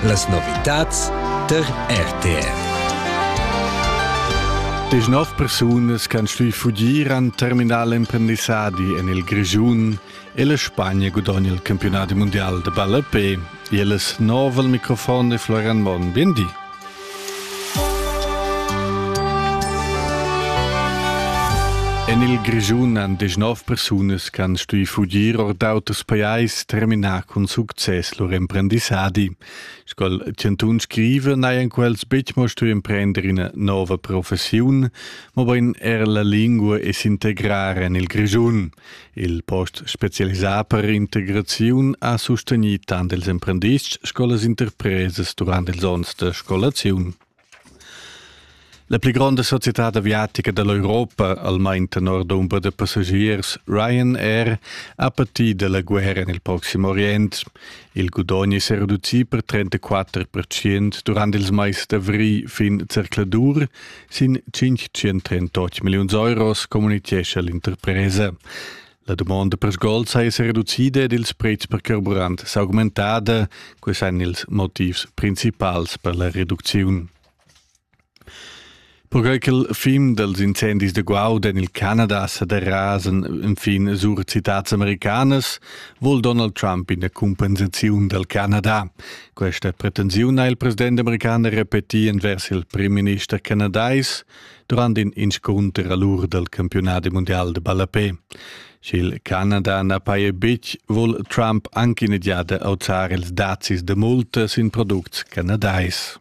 Las novitads der RTR. Des nov persunas che han stuì fugir an terminal emprendissadi en il Grischun e la Spagna gudogna il campionat mundial de ballape. Il es nov al microfon de Florian Monn. Bien di. En il Grischun han deschnov persunas che han stuì fugir or d'auters pajais terminà cun success lur emprendissadi. Sco chantun scriva, n'hajan quels betg mo stuì emprender ina nova professiun, mobain er la lingua e s'integrar en il Grischun. Il post specialisà per integraziun ha sustegnì tant ils emprendists sco las interpresas durant ils onns da scolaziun. La pli gronda societad aviatica da l'Europa, almain tenor dumber da passagiers Ryanair, ha patì da la guerra en il Proxim Orient. Il gudogn è sa reducì per 34% durant ils mais d'avrigl fin zercladur Sin 538 milliuns euros communitgescha l'interpresa. La dumonda per sgols ha esser reducida ed ils prezs per carburant s'augmentada. Quei ein ils motivs principals per la reducziun. Perquai ch'il film dels incendis de Guaud en il Canada sa derasen infin sur citats americanas, vuol Donald Trump ina compensaziun dal Canada. Questa pretensiun ha il president american repetì envers il primminister canadais durant in inscunter a l'ur dal campiunadi mundial de ballapé. Sch'il Canada na paja betg, vul Trump anche in giada auzar ils dazis de multa sin products canadais.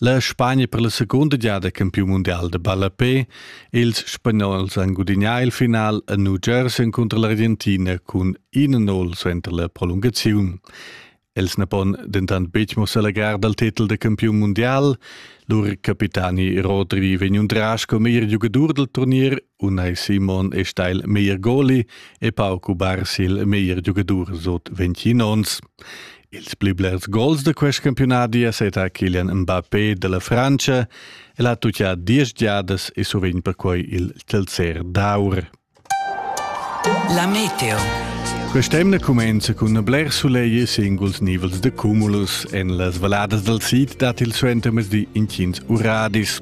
La Spagna per la secunda giada campiun mundial da ballapè. Ils Spagnols han gudignà il final a New Jersey encunter l'Argentina cun 1-0 suenter la prolungaziun. Els na pon dentant betg mo s'allegrar dal titel da campiun mundial. Lur capitani Rodri vegn undras come er giugadur dal turnier Unai Simon è sta il meglier goli e pauc ubar sil meglier giugadur sut 21 onns. Ils pli blers gols da quest campionadi è seta Kilian Mbappé della Francia e l'ha tuttia diesch giadas e sovint perquai il telzer d'aur. La Meteo Quest'emna cumenza cun bler sulegl e singuls nivels de cumulus. En las valadas dal sid dat il suentermezdi intgins uradis.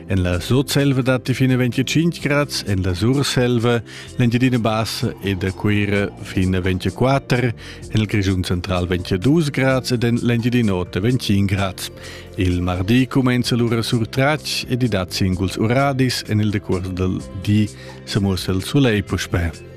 En la Sutselva datti fin a 25 grads, en la Surselva, l'Engiadina Bassa ed a Cuira fin a 24, en il Grischun Central 22 grads ed en l'Engiadina Ota 25 grads. Il martì cumenza lura sur Tratsch ed i dat singuls uradis en il decuors dal di, sa mussa il sulegl puspè.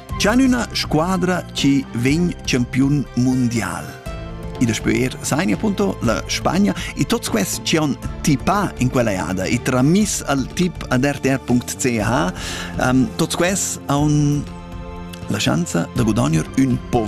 C'han üna squadra chi vegn champiun mundial. I daspö eir sai appunto la Spagna e tots questi chi han tipà in quella jada e tramis al tip ad rtr.ch um, tots questi han la schanza da guadagnar ün po